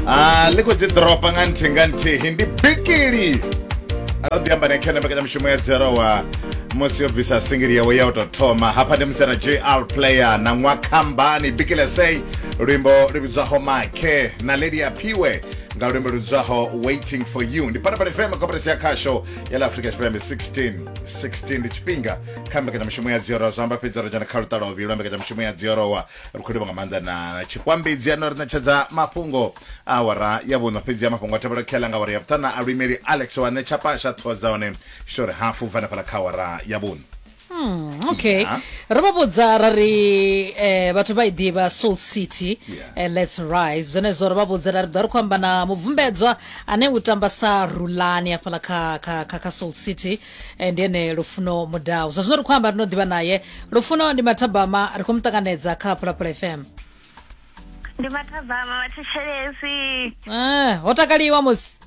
a ḽi khou dzi ḓoropa nga nthihi nga nthihi ndi bikili ro ḓi amba nekhe na mbekanyamushumo ya dzerowa musi yo bvisa singili yawe ya u tou thoma hafha ndi musi na jr player na ṅwakhambani bikile sei luimbo lu vhidzwaho makhe na lelia phiwe nga luimbo lu vhidzwaho waiting for you ndi panapani fm koperesi ya khasho ya la afrika tshipembe 16 16 ndi tshifhinga kha mbekanyamushumo ya dziorowa zwa amba fhedzi ro dzhena kha luṱalovi lwa mbekanyamushumo ya dziorowa ri khou livha nga maanḓa na tshikwambedzi ano ri ṋetshedza mafhungo awara ya vhuṋa fhedzi ya mafhungo a tevhela khela nga awara ya vhuṱana a luimeli alex wa ṋetsha pasha ṱhoho dza hone shori hafu bva nefhala kha awara ya vhuṋa hmm, okay yeah. ro vha vhudza ra ri eh, vhathu vha i ḓivha salt city yeah. eh, let's rise zwenezwo ro vha vhudza ra ri ḓo ri khou amba na mubvumbedzwa ane u tamba sa rulani afhala kha, kha, kha, kha salt city Eh, ndi ene lufuno mudau zwa zwino ri khou amba ri no ḓivha naye lufuno ndi mathabama ri khou mu ṱanganedza kha phalaphala fm ndi mathabama vhathetshelesi Eh, ho takaliwa musi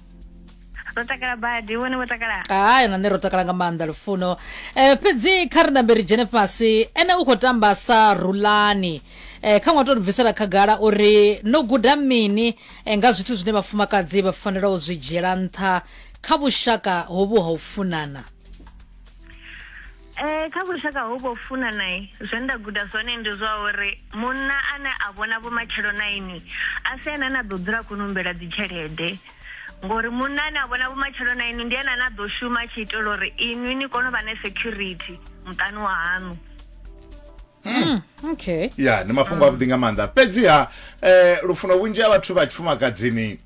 ro takala badi vhone vho takala hayi na nṋe ro takala nga maanḓa lufuno eh, fhedzi kha ri nambe ri dzhene fhasi ene u khou tamba sa rulani eh, kha ṅwa to ri bvisela khagala uri no guda mini eh, nga zwithu zwine vhafumakadzi vha fanela u zwi dzhiela nṱha kha vhushaka hovhu ha u funana Eh kha vhushaka ho vho funa nae zwe nda guda zwone ndi zwa uri munna ane a vhona vhumatshelo na ini a si ene na ḓo dzula khou numbela dzi tshelede ngori munna ane a vhona vhumatshelo na ini ndi ene ane a ḓo shuma a tshi itela uri inwi ni kone u vha na security muṱani wa haṋu mm. okay ya ndi mafhungo avhuḓi nga maanḓa fhedziha eh, lufuno vhunzhi ha vhathu vha tshifumakadzini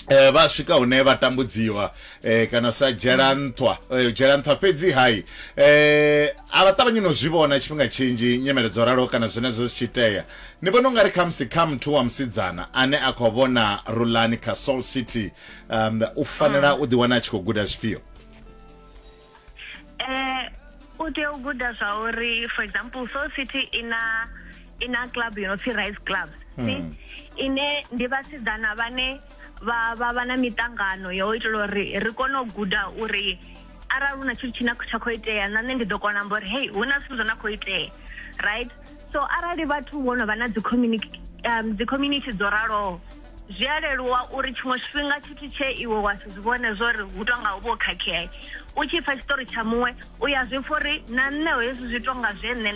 Eh, vha swika hune vha tambudziwa eh, kana sa dzhela nṱhwa eh, dzhela nṱhwa fhedzi hai eh, a vha ṱavhanyi no zwi vhona tshifhinga tshinzhi nyimele dzo ralo kana zwenezwo zwi tshi itea ni vhona ungari khamusi kha muthu wa musidzana ane a khou vhona rulani kha soul city um, u fanela u ḓiwana a tshi khou guda zwifhio eh u tea u guda zwa uri for example soul city i na i na club yo no pfi rise club hmm. ine ndi vhasidzana vhane vha vha vha na miṱangano ya u itela uri ri kone u guda uri arali hu na tshithu tshine tsha khou itea na nṋe ndi ḓo kona amba uri hei hu na zwithu zwo na khou itea right so arali vhathu vho no vha na dzi community um, dzi community dzo raloho zwi a leluwa uri tshiṅwe tshifhinga tshithu tshe iwe wa si zwi vhone zwo ri hu tonga u vho khakhea u tshi pfa tshiṱori tsha muṅwe u ya zwi pfa uri na nṋe hezwi zwi tonga zwe nṋe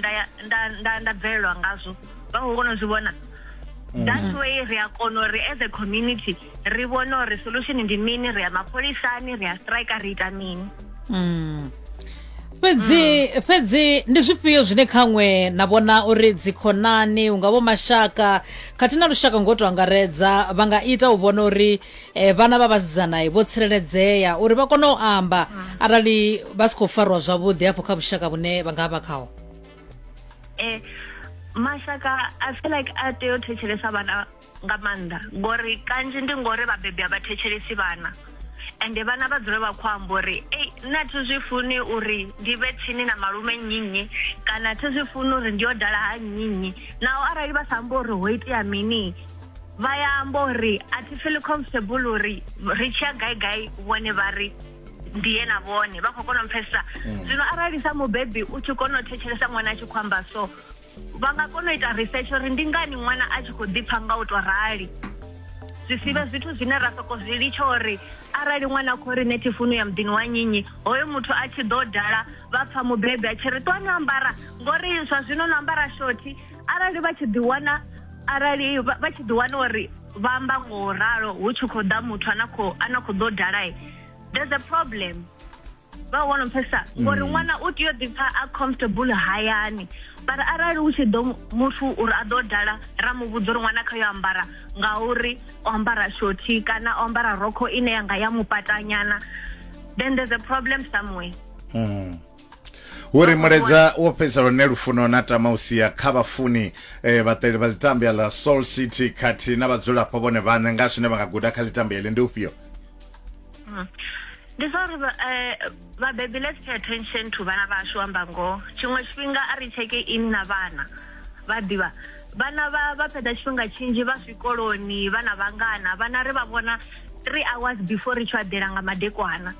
nda bvelelwa ngazwo vha khou kona u zwi vhona Mm. that's way ri a kona uri as a community ri vhone uri solution ndi mini ri ya mapholisani ri ya strike ri ita mini mm. fhedzi fhedzi ndi zwifhio zwine khaṅwe na vhona uri dzikhonani unga vho mashaka khathihi na lushaka ngo to angaredza vha nga ita u vhona uri eh, vhana vha vhasidzanai vho tsireledzea uri vha kone u amba arali vha si khou fariwa zwavhuḓi hafho kha vhushaka vhune vha nga vha khaho eh mashaka i feel like a tea u thetshelesa vhana nga maanḓa ngori kanzhi ndi ngori vhabebi a vha thetshelesi vhana ende vhana vha dzule vha khou amba uri ei nṋe a thi zwi funi uri ndi vhe tsini na malume nnyinnyi kana a thi zwi funi uri ndi yo dala ha nnyinnyi naho arali vha sa amba uri ho itea mini vha ya amba uri a thi feel comfortable uri ri tshiya gai gai vhone vha ri ndi ye na vhone vha khou kona u pfhesesa mm. zwino arali sa mubebi u tshi kona u thetshelesa ṅwana a tshi khou amba so vha nga kona u ita research uri ndi ngani ṅwana a tshi khou ḓipfa nga u tou rali zwi si vhe zwithu zwine ra soko zwi litsha uri arali ṅwana a khou ri nṋe thifunu ya muḓini wa nyinyi hoyo muthu a tshi ḓo dala vha pfha mubebi a tshi ri ṱuwani ambara ngori zwa zwino no ambara shothi arali vha tshi ḓiwana arali vha tshi ḓiwana uri vha amba nga u ralo hu tshi khou ḓa muthu ana khou ana khou ḓo dalae there's a problem vha wana mphesa ngori mm. ṅwana u tea u ḓipfa a comfortable hayani but arali u tshi ḓo muthu uri a ḓo dala ra mu vhudza uri ṅwana kha yo ambara ngauri o ambara shothi kana o ambara rokho ine yanga ya mupatanyana then there's a problem somewhere mm. uri muledza wo fhedza lune lufuno na tama u sia kha vhafuni eh, vhaṱeli vha ḽitambia ḽa soul city khathihi na vhadzulapo vhone vhaṋe nga zwine vha nga guda kha ḽitambia ḽi ndi ufhio mm. ndi zwa uri vha- eh, vhabebi let's pay attention to vhana vhashu amba ngoho tshiṅwe tshifhinga a ri tsheke ini na vhana vha ḓivha vhana vha vha fhedza tshifhinga tshinzhi vha zwikoloni vhana vhangana vhana ri vha vhona three hours before ri tshi vha ḓela nga madekwana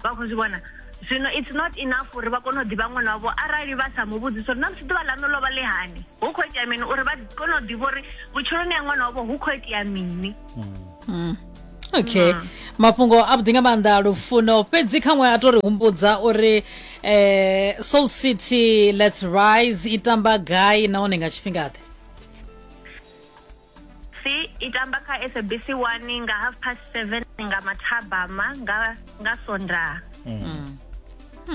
vha khou zwi vhona zwino it's not enough uri vha kone u ḓivha ṅwana wavho arali vha sa mu vhudzisa uri na musi ḓuvha ḽaṋu ḽo vha ḽi hani hu khou itea mini uri vha kone u ḓivha uri vhutshiloni ya ṅwana wavho hu khou itea mini okay mafhungo a vhuḓi nga maanḓa lufuno fhedzi khaṅwe a to ri humbudza uri eh, soul city let's rise i tamba gai nahone nga tshifhinga ḓe si i tamba kha sabc 1 nga half past 7 nga mathabama nga nga sondaha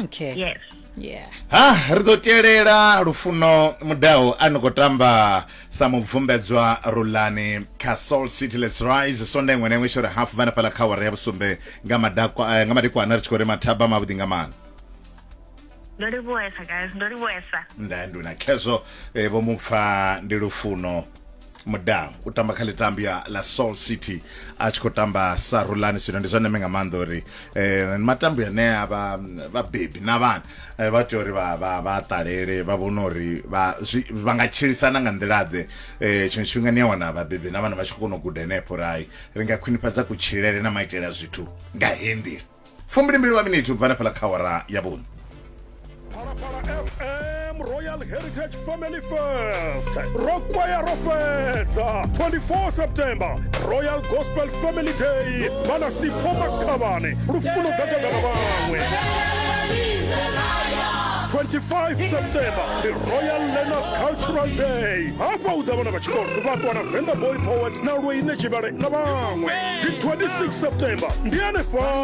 okay yes yeah ha ri ḓo tielela lufuno mudao a ni khou tamba sa mubvumbedzwa rulani kha soul city let's rise sonda iṅwe na iṅwe tshiori hafu vha na fhaḽa kha wara ya vhusumbe nga madakwa eh, nga madekwana ri tshi khou ri mathaba mavhuḓi nga maana ndo livhuwesa guys ndo livhuwesa nda nduna khezwo eh, vho mupfa ndi lufuno mudau u tamba kha ḽitambo ya la soul city a tshi khou tamba sa rulani zwino ndi zwa ndeme nga maanḓa uri um matambo ane a vha vhabebi na vhana eh, vha tea uri vha vha vha ṱalele vha vhone uri vha zwi- vha nga tshilisana nga nḓilaḓe um tshiṅwe tshifhinga ni a wana vhabebi na vhana vha tshi khou kona u guda henefho uri hai ri nga khwinifhadza kutshilele na maitele a zwithu nga heyi nḓila fumbilimbili wa minithi u bva hanefhaḽa kha awara ya vhuṋa Phalaphala FM Royal Heritage Family Fest ro kwaya ro fhedza 24 September Royal Gospel Family Day vhana Sipho Makhavhane lufuno gagada na vhaṅwe 25 September the Royal Learners Cultural Day hafha u ḓa vhana vha tshikolo vha ṱwa na Venda Boy Poet na Lweine Tshivhale na vhaṅwe dzi 26 September ndi hanefha